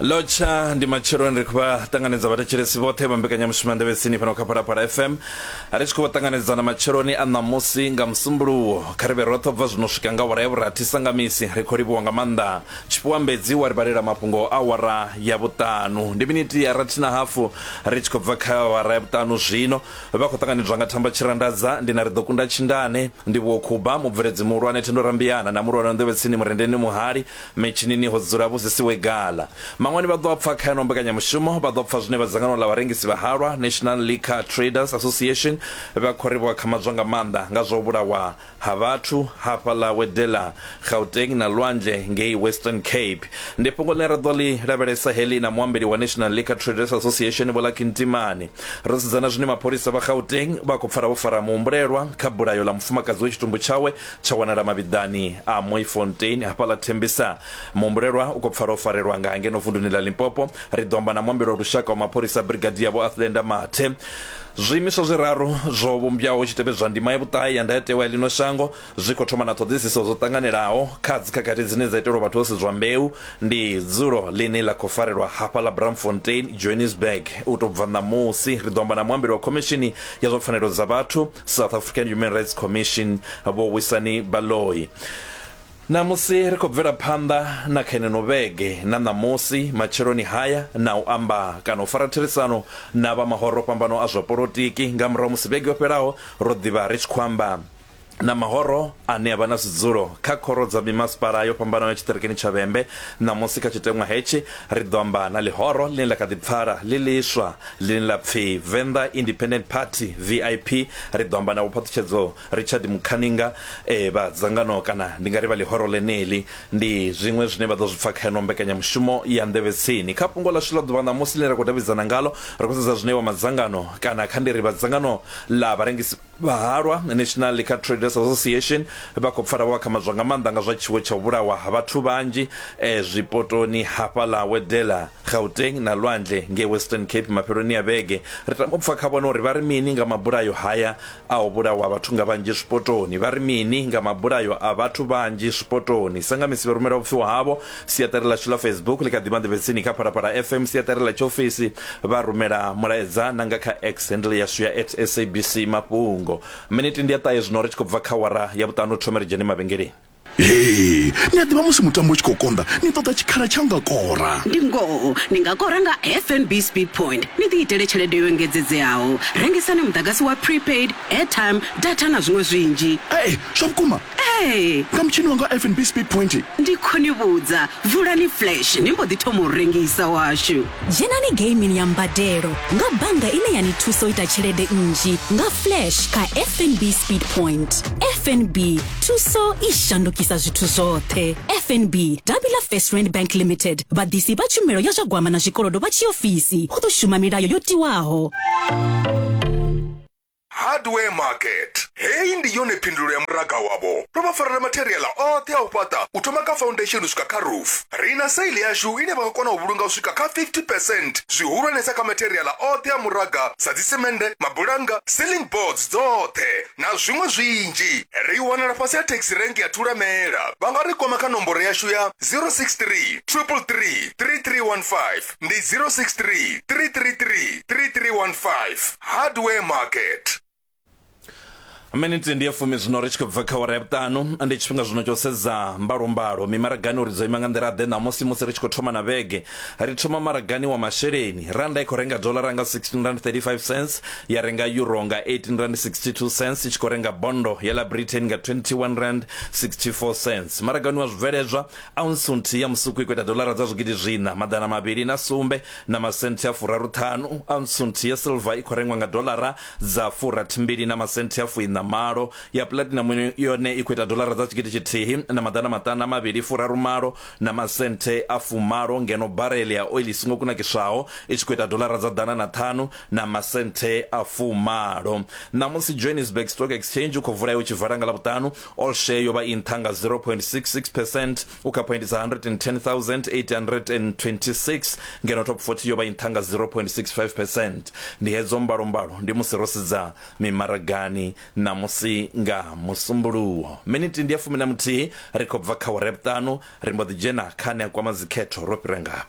lotsha ndi matsheloni ri khou vha ṱanganedza vhathetshelesi vhoṱhe vha mbekanyamushumo ya ndevhetsini fhano kha phalaphala fm ri tshi khou vha ṱanganedza na matsheloni a ṋamusi nga musumbuluwo kha ri vhe roṱhe bva zwino swika nga awara ya vhurathi sangamisi ri khou livhuwa nga maanḓa tshifhiwa mbedzi wa ri vhalela mafhungo a awara ya vhuṱanu ndi minithi ya rathi na hafu ri tshi khou bva kha awara ya vhuṱanu zwino Vha khou ṱanganedzwa nga Themba Tshirandadza, Ndi na ri ḓo kunda Tshindane, Ndivhuwo Khuba, Mubveledzi Muhulwane Thendo Rambiana na Mulwani wa Nḓevhetsini Murendeni Muhali, Mitshinini ho dzula Vho Zisiwe Gala. Maṅwani vha ḓo a pfa kha yeneyo mbekanyamushumo, vha ḓo pfa zwine vha dzangano ḽa vharengisi vha halwa, National Liquor Traders Association, vha khou ri vho akhamadzwa nga maanḓa nga zwa u vhulawa ha vhathu hafhaḽa Wedella, Gauteng na lwanzhe ngei Western Cape. Ndi fhungo ḽine ra ḓo ḽi lavhelesa heḽi na muambeli wa National Liquor Traders Association Vho Lucky Ntimane. Ro sedzana zwine mapholisa vha Gauteng vha khou pfala vho fara muhumbulelwa kha bulayo ḽa mufumakadzi we tshitumbu tshawe tsha wanala mavhiḓani a Mooifontein hafhaḽa Tembisa. Muhumbulelwa u khou pfala o farelwa nga ngeno vunduni ḽa Limpopo. Ri ḓo amba na muambeli wa lushaka wa mapholisa Brigadier Vho Athlenda Mathe. Zwiimiswa zwiraru zwo vhumbwaho hu tshi tevhedzwa ndima ya vhuṱahe ya ndayotewa ya ḽino shango zwi khou thoma na ṱhoḓisiso dzo ṱanganelaho kha dzikhakhathi dzine dza itelwa vhathu ho sedzwa mbeu. Ndi dzulo ḽine ḽa khou farelwa hafha ḽa Braamfontein, Johannesburg. U tou bva ṋamusi, ri ḓo amba na muambeli wa Khomishini ya zwa Pfanelo dza Vhathu, South African Human Rights Commission, Vho Wisani Baloyi. Ṋamusi ri khou bvela phanḓa na kha ineno vhege na ṋamusi matsheloni haya na u amba kana u fara therisano na vha mahoro o fhambanaho a zwa polotiki nga murahu musi vhege yo fhelaho ro ḓi vha ri tshi khou amba na mahoro ane a vha na zwidzulo kha khoro dza mimasipala yo fhambanaho ya tshiṱirikini tsha Vhembe. Ṋamusi kha tshiteṅwa hetshi ri ḓo amba na ḽihoro ḽine ḽa kha ḓi pfala ḽi ḽiswa ḽine ḽa pfi Venḓa Independent Party, VIP. Ri ḓo amba na vhophaṱhutshedzo Richard Mukhaninga, Ee, vha dzangano kana ndi nga ri vha ḽihoro ḽeneḽi ndi zwiṅwe zwine vha ḓo zwi pfa kha yeneyo mbekanyamushumo ya Nḓevhe Tsini. Kha fhungo ḽashu ḽa ḓuvha ṋamusi ḽine ra khou davhidzana ngaḽo, ri khou sedza zwine vha madzangano kana kha ndi ri vha dzangano ḽa vharengisi vha halwa, National Liquor Traders Association, vha khou pfala vho akhamadzwa nga maanḓa nga zwa tshiwo tsha u vhulahwa ha vhathu vhanzhi zwipotoni hafhaḽa Wedella, Gauteng na Lwandle ngei Western Cape mafheloni a vhege. Ri tama u pfa kha vhone uri vha ri mini nga mabulayo haya. A Ho vhulawa vhathu nga vhanzhi zwipotoni. Vha ri mini nga mabulayo a vhathu vhanzhi zwipotoni? Sa nga misi vha rumela vhupfiwa havho. Siaṱari ḽashu ḽa Facebook ḽi kha ḓi vha nḓevhetsini kha Phalaphala FM, siaṱari ḽa tshiofisi, vha rumela mulaedza, na nga kha X, handle yashu ya at SABC Mafhungo. Miniti ndi ya ṱahe zwino ri tshi khou bva kha awara ya vhuṱanu, thome ri dzhene mavhengeleni. Hee, ni a ḓivha musi mutambo u tshi khou konḓa ni ṱoḓa tshikhala tsha u nga kora. Ndi ngoho, ni nga kora nga FNB Speed Point ni ḓiitele tshelede yo engedzedzeaho. Rengisani muḓagasi wa prepaid, airtime, data na zwiṅwe zwinzhi. Hee, zwa vhukuma? Ee. Nga mutshini wanga wa FNB Speed Point. Ndi khou ni vhudza, vulani flash ni mbo ḓi thoma u rengisa washu. Dzhenani geimini ya mbadelo nga bannga ine ya ni thusa u ita tshelede nnzhi nga Flash kha FNB Speed Point. FNB, thuso i shandukisa zwithu zwoṱhe. FNB, davhi ḽa First Rand Bank Limited, vhaḓisi vha tshumelo ya zwa gwama na zwikolodo vha tshiofisi, hu ḓo shuma milayo yo tiwaho. Hardware Market. Heyi ndi yone phindulo ya muraga wavho. Ro vha farela matheriaḽa oṱhe a u fhaṱa u thoma kha foundation u swika kha roof. Ri na sale yashu ine vha nga kona u vhulunga u swika kha 50 percent zwihulwanesa kha matheriaḽa oṱhe a muraga sa dzisemende, mabulannga, ceiling boards dzoṱhe na zwiṅwe zwinzhi. Ri wanala fhasi ha taxi rank ya Thulamela. Vha nga ri kwama kha nomboro yashu ya 063 333 3315. ndi 063 333 3315 hardware market miniti ndi ya fumi zwino ri tshi khou bva kha wara ya vhuṱanu ndi tshifhinga zwino tsho sedza mbalombalo mimaragani uri dzo ima nga nḓila ḓe ṋamusi musi ri tshi khou thoma na vhege ri thoma maragani wa masheleni randa i khou renga dolara nga 16 rand 35 cents ya renga euro nga 18 rand 62 cents i tshi khou renga bondo ya la britain nga 21 rand 64 cents maragani wa zwibveledzwa aunsu nthihi ya musuku i khou ita dolara dza zwigidi zwiṋa maḓana mavhili na sumbe na masenthe a furaruṱhanu aunsu nthihi ya silva i khou rengwa nga dolara dza furathimbili na masenthe a fuiṋa malo ya pulatinamu yone i khou ita dolara dza tshigidi tshithihi na maḓana maṱanu a mavhili furarumalo na masenthe a fumalo ngeno barele ya oili i songo kunakiswaho i tshi khou ita dolara dza ḓana na ṱhanu na masenthe a fumalo ṋamusi johannesburg stock exchange u khou vula ya u tshi vala nga ḽavhuṱanu All share yo vha i nṱha nga 0.66 percent u kha phoindi dza 110,826 ngeno top 40 yo vha i nṱha nga 0.65 percent. Ndi hedzo mbalombalo ndi musi ro sedza mimaragani ṋamusi nga musumbuluwo. Minithi ndi ya fumi na muthihi ri khou bva kha awara ya vhuṱanu ri mbo ḓi dzhena kha ane a kwama dzikhetho ro fhira ngafha.